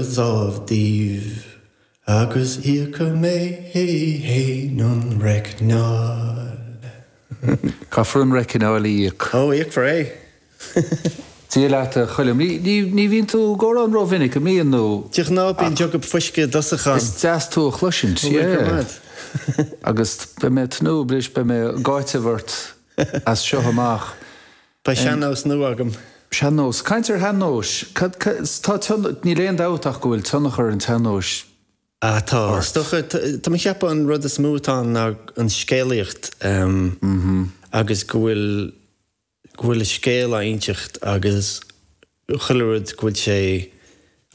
dhámh daoibh agus íocadh mé fhéin an reicneáil. Caithfear an reicneáil a íoc. Ó, íocfar é. Dia leat a Choilm. Ní bhíonn tú go mór ann ró-mhinic, an mbíonn? Nó. De ghnáth bíonn jug of fuisce i dtosach ann. Is deas tú a chloisint. An bhfuil coimeád? Agus beidh mé ag tnúth, bris, beidh mé ag áiteamh ort as seo amach. Beidh sean-nós nua agam. Sean-nós. Caint ar shean-nóis. Cad, tá tion, níl aon dabht ach go bhfuil tionchar an tsean-nóis Ah, tá, is ort. dócha. Tá mé a cheapadh an rud is mó atá ann ná an scéalaíocht agus go bhfuil, go bhfuil scéal á inseacht agus chuile rud, go bhfuil sé in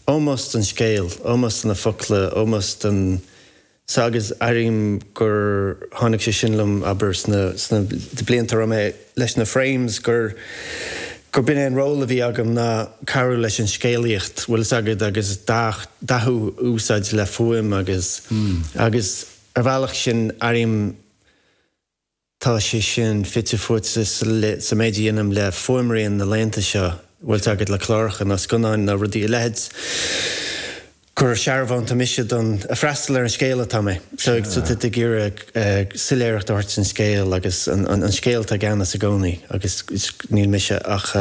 ómós don scéal, ómós do na focla, ómós don sa agus airím gur tháinig sé sin liom, abair, sna sna blianta a raibh mé leis na Frames, gur gurb in é an ról a bhí agam ná cabhrú leis an scéalaíocht, bhfuil fhios agat, agus dath dathú a úsáid le fuaim agus agus ar bhealach sin airím Tá sé sin fite fuaite sa méid a dhéanaim le fuaimrian na laethanta seo, an bhfuil fhios agat le cláracha nó scannáin nó rudaí a leithéid, gur searbhónta mise don ag freastal ar an scéal atá mé. So táim ag iarraidh soiléireacht a thabhairt don scéal agus an scéal atá i gceannas i gcónaí agus níl mise ach.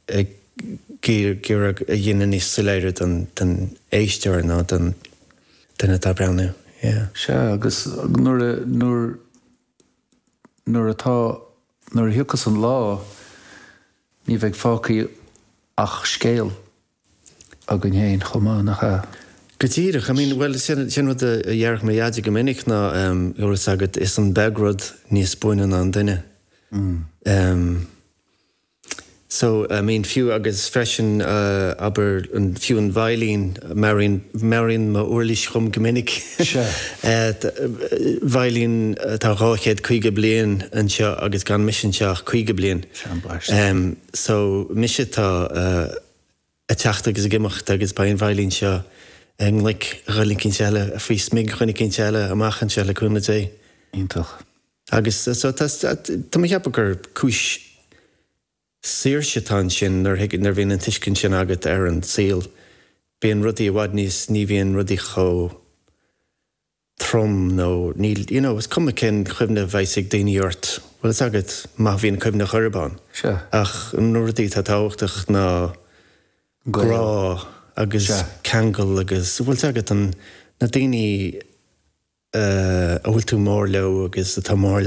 ag iarraidh é a dhéanamh níos soiléire don éisteoir nó don duine atá ag breathnú. Sea, agus nuair a, nuair, nuair atá, nuair a thiocfas an lá, ní bheidh fágtha ach scéal againn féin chomh maith, nach ea? Go díreach. I mean, bhuel, sin, sin rud a déarfadh mo Dhaide go minic ná, a bhfuil 'fhios agat, is an-bheag rud níos buaine ná an duine. So, I mean, fiú agus freisin, abair, fiú an veidhlín, meabhraíonn m'uirlís dhom go minic, veidhlín atá dhá chéad caoga bliain d'aois agus gan mise anseo ach caoga bliain. So, mise atá ag teacht agus ag imeacht agus beidh an veidhlín seo i nglaic duine éicínt eile, faoi smig duine éicínt eile amach anseo, le cúnamh Dé. Iontach. Agus so tá tá mé a cheapadh gur cúis saoirse atá ansin nuair thuig nuair bhíonn an tuiscint sin agat ar an saol. Bíonn rudaí i bhfad níos ní bhíonn rudaí chomh trom nó níl you know is cuma cén chuimhne a bheas ag daoine ort, bhfuil fhios agat, má bhíonn cuimhne ar chor ar bith ann. Sure. Ach na rudaí atá tábhachtach ná. grá agus ceangal agus an bhfuil fhios agat an na daoine a bhfuil tú mór leo agus atá mór